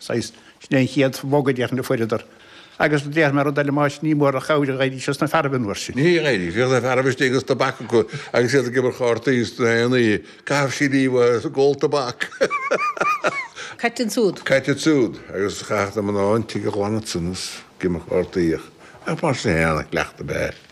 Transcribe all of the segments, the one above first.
saghas, sin é an chéad bhog a fuaireadar. Agus do dhéarfaidh mé rud eile, mar ní mór an chabhair a dh'éirigh sé sna fearaibh an uair sin. Ní dh'éirigh. Bhíodh na fearaibh istigh agus tobac acu agus iad ag imirt chártaí gach aon oíche. Caitheadh siad díobh agus a gcuid tobac. Caite ansúd. Caite ansúd. Agus chaitheadh na mná an tigh a ghlanadh ansan agus ag imirt chártaí ach mar sin fhéin a chleacht ab ea é.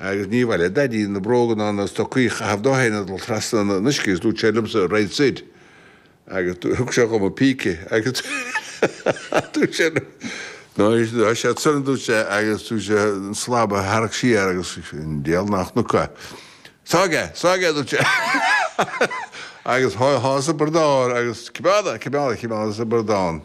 Agus níor mhaith le Daidí na bróga ná na stocaí a chaitheamh de féin ag dul trasna na n-uiscí agus dúirt sé liomsa, Right Sid. Agus thug sé dhom an píce agus dúirt sé liom, Ná bí siad soir a dúirt sé agus thug sé an slab a tharrac siar agus an diabhal ná chonac. Sáigh é! Sáigh é a dúirt sé. Agus shás an slab sa bradán agus cimeádadh, cimeádadh, cimeádadh sa bradán.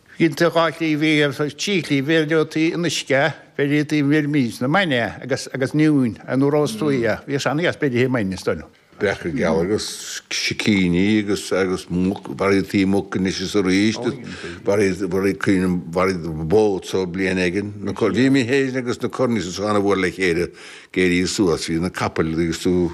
Ginte dhá shlí bhí, agus trí shlí, bhí ar liotaí an uisce, bhí ar liotaí an mhirmín, na maine agus agus an iúin, an iúr os tuaidh dhe. Bhí sean iasc beirithe i maine, is dóigh liom. Breac geal agus sicíní agus agus muc, mharaítí muc anois is arís, mharaítí bó sa bhliain éigin. Bhí mé fhéin agus na Cornies an-mhór le chéile ag éirí suas, bhí na capaill acu,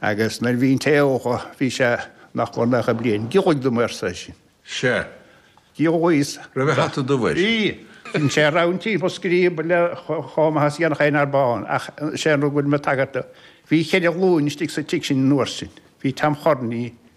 Agus nuair bhíos an-óg bhí sé nach mór naocha bliain. Giollaigh dom, arsa eisean. Sea. Giolla Íosa. raibh a hata dubh air. Bhí. Bhí sé a rámhainn timpeall scríoba le hómhais dhéanach aon arb ann ach is é an rud a bhfuilim ag tagairt dó, bhí cheithre ghlúin istigh sa tigh sin an uair sin. Bhí Tom Chorní.